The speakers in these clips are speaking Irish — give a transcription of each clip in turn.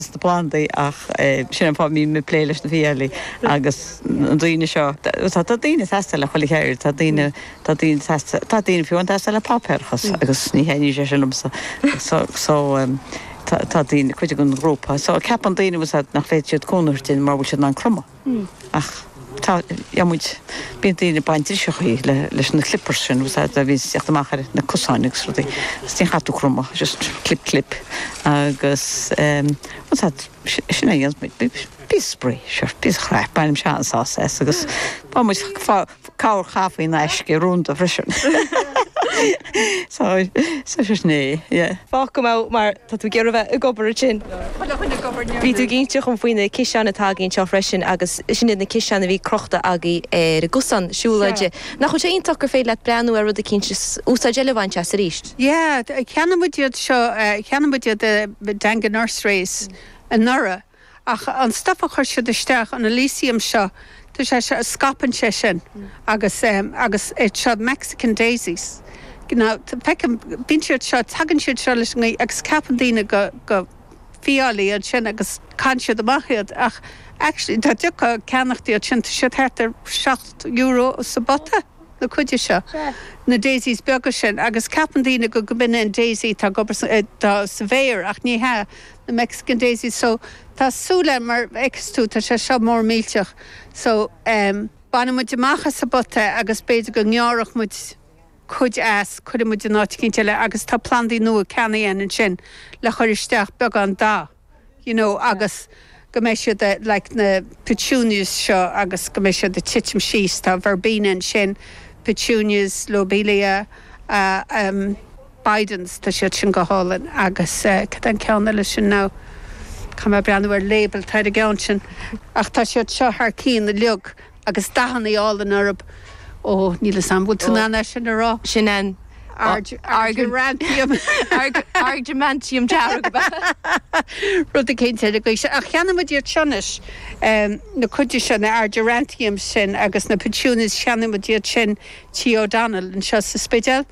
sna plandaí ach sin an fáth a mbím ag plé leis na fiailí agus na rudaí seo. Tá daoine sásta le chuile cheird, tá daoine, tá daoine sásta, tá daoine fiú sásta le páipéarachas agus ní thaitníonn sé sin liomsa so, so tá daoine, cuid den ghrúpa, so ceapann daoine, uaireanta, nach bhféadfadh siad cúnamh a thabhairt dúinn mara bhfuil siad in ann cromadh. Ach tá muid, bíonn daoine ag baint driseachaí leis na clippers sin agus a bhíonn ag teacht amach ar na cosáin agus rudaí agus ní chaithfidh tú cromadh, just clip clip agus bhuel tá, sin a dhéanfas muid, bíonn spraoi, sure, bíonn craic, baineann muid an-sásamh as agus fág muid, fág, Cabhair chaife in aisce rúnda freisin. Fág go mbeadh, mar tá tú ag iarraidh bheith ag obair ansin. Bhí tú ag inseacht dhom faoi na ciseáin atá againn anseo freisin agus sin iad na ciseáin a bhí crochta agaibh ar an gcosán siúlóide. Nach bhfuil sé iontach gur féidir leat breathnú ar rud eicínt is úsáid eile a bhaint as arís? Yeah, cheannaigh muid iad seo, cheannaigh muid iad i Dangan Nurseries anuraidh. Ach an stuif a chuir siad isteach an alyssum seo, tá sé seo, scaipeann sé sin agus, agus iad seo Mexican Daisies, you know, feicim, bíonn siad seo, tagann siad seo leis an ngaoth agus ceapann daoine go, gur fiailí iad sin agus caitheann siad amach iad ach actually dá dtiocfá ag ceannacht iad sin, tá siad thart ar seacht euro sa bpota, na cinn seo, na daisies beaga sin agus ceapann daoine go, gob in an daisy atá agaibh sa, sa bhféar ach ní hea, na Mexican Daisies so tá súil agam mar fheiceas tú tá sé seo mór millteach so em baineann muid amach as an bpota é agus b'fhéidir go ngearrfadh muid cuid as cuireann muid in áit eicínt eile agus tá plandaí nua ceannaithe againn ansin le chuir isteach beagán dath you know agus go mbeidh siad a like na petunias seo agus go mbeidh siad ag titim síos tá verbena ansin petunias lobelia a em Bidens, tá siad sin go hálainn agus eh, céard é an ceann eile sin now, caithfidh mé breathnú ar label, tá ar an gceann sin ach tá siad seo thar cinn uilig agus dathannaí álainn orthub, ó níl 'fhios a'm, bhfuil tú in ann é sin a rá? Sin an Argyranthemum. Argyranthemum dearg ab ea? Rud eicínt le Google, ach cheannaigh muid iad seo anois, em, na cinn seo, na Argyranthemums sin agus na Petunias, cheannaigh muid iad sin Tigh O'Donnell anseo sa Spidéal.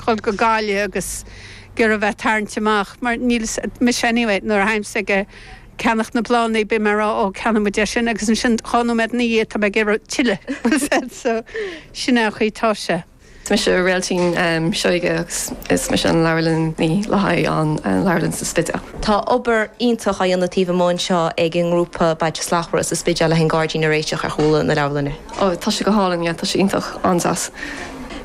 dhul go Gaillimh agus ag iarraidh a bheith tarraingt amach mar bím mise anyway nuair a táimse ag ceannacht na bplandaí bím ag rá ó ceannóidh muid é sin agus ansin dhá nóiméad ina dhiaidh tá mé ag iarraidh tuilleadh so sin é an chaoi atá sé. Is mise Réiltín Seoige agus is mise an leabharlannaí le haghaidh an leabharlann sa Spidéal. Tá obair iontach á dhéanamh taobh amuigh anseo ag an ngrúpa Bailte Slachtmhara sa Spidéal le haghaidh an gairdín a réiteach ar chúla na leabharlainne. Oh tá sé go hálainn yeah tá sé iontach an-deas.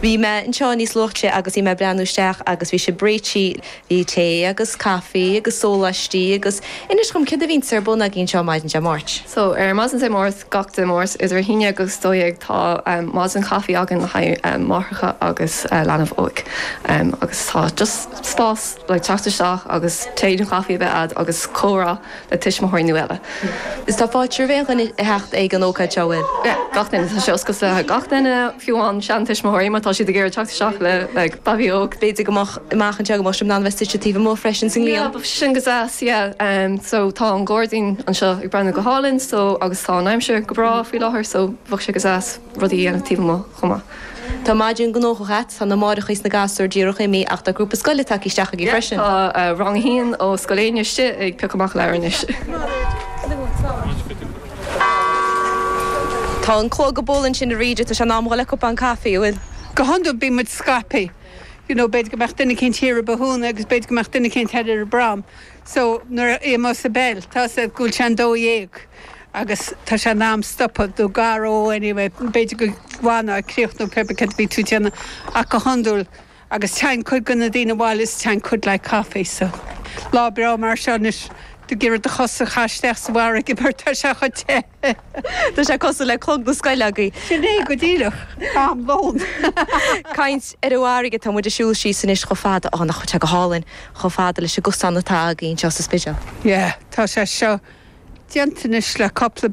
Bhí mé anseo níos luaithe agus bhí mé ag breathnú isteach agus bhí sibh réití, bhí tae agus caife agus sóláistí agus inis dhom céard a bhíonns ar bun agaibh anseo maidin Dé Máirt. So, ar maidin Dé Máirt, gach Dé Máirt idir a haon déag agus dó dhéag tá maidin chaife againn le haghaidh máithreacha agus leanbh óg agus tá just spás like teacht isteach agus tae nó caife a bheith a'd agus comhrá. le tuismitheoirí nó eile. Is tá fáilte roimh 'chuile dhuine a theacht ag an ócáid seo a bhfuil. gach duine. Tá sé oscailte do gach duine, fiú amháin seantuismitheoirí má tá siad ag iarraidh teacht isteach le babaí óg. B'fhéidir go mbeadh amach anseo go mbeadh sibh in ann bheith suite taobh amuigh freisin sa ngrian. Yeah, bheadh sé sin go deas, yeah. So tá an gairdín anseo ag breathnú go hálainn so agus tá an aimsir go breá faoi láthair so bheadh sé go deas rudaí a dhéanamh taobh amuigh chomh maith. Tá maidin gnóthach a'd. Tá na máithreacha is na gasúir díreach imithe ach tá grúpa scoile tagtha isteach agaibh freisin. Tá rang a haon ó Scoil Éinne istigh ag piocadh amach leabhair anois. Tá an clog ag bualadh ansin arís agus tá sé in am a dhul ag ól cupán caife, an bhfuil? Go hiondúil bíonn muid scaipthe, you know, b'fhéidir go mbeadh duine eicínt thiar i Bothúna agus b'fhéidir go mbeadh duine eicínt thoir ar an bProm. So nuair a airíonn muid an bell tá a fhios a'd go bhfuil sé an dó dhéag agus tá sé in am stopadh do go leor anyway b'fhéidir go bhfanfá ag críochnú pé ar bith céard a bhí tú déanamh ach go hiondúil téann cuid de na daoine abhaile is téann cuid le haghaidh coffee so lá breá mar seo anois d'iarrfá do chosa a chaitheamh isteach sa bhfarraige mar tá sé chomh te. Tá sé cosúil le clog na scoile againn. Sin é go díreach. Am lóin. Caint ar an bhfarraige, tá muid ag siúl síos anois chomh fada, á nach bhfuil sé go hálainn, chomh fada leis an gcosán atá againn anseo sa Spidéal. Yeah, tá sé seo déanta anois le cúpla.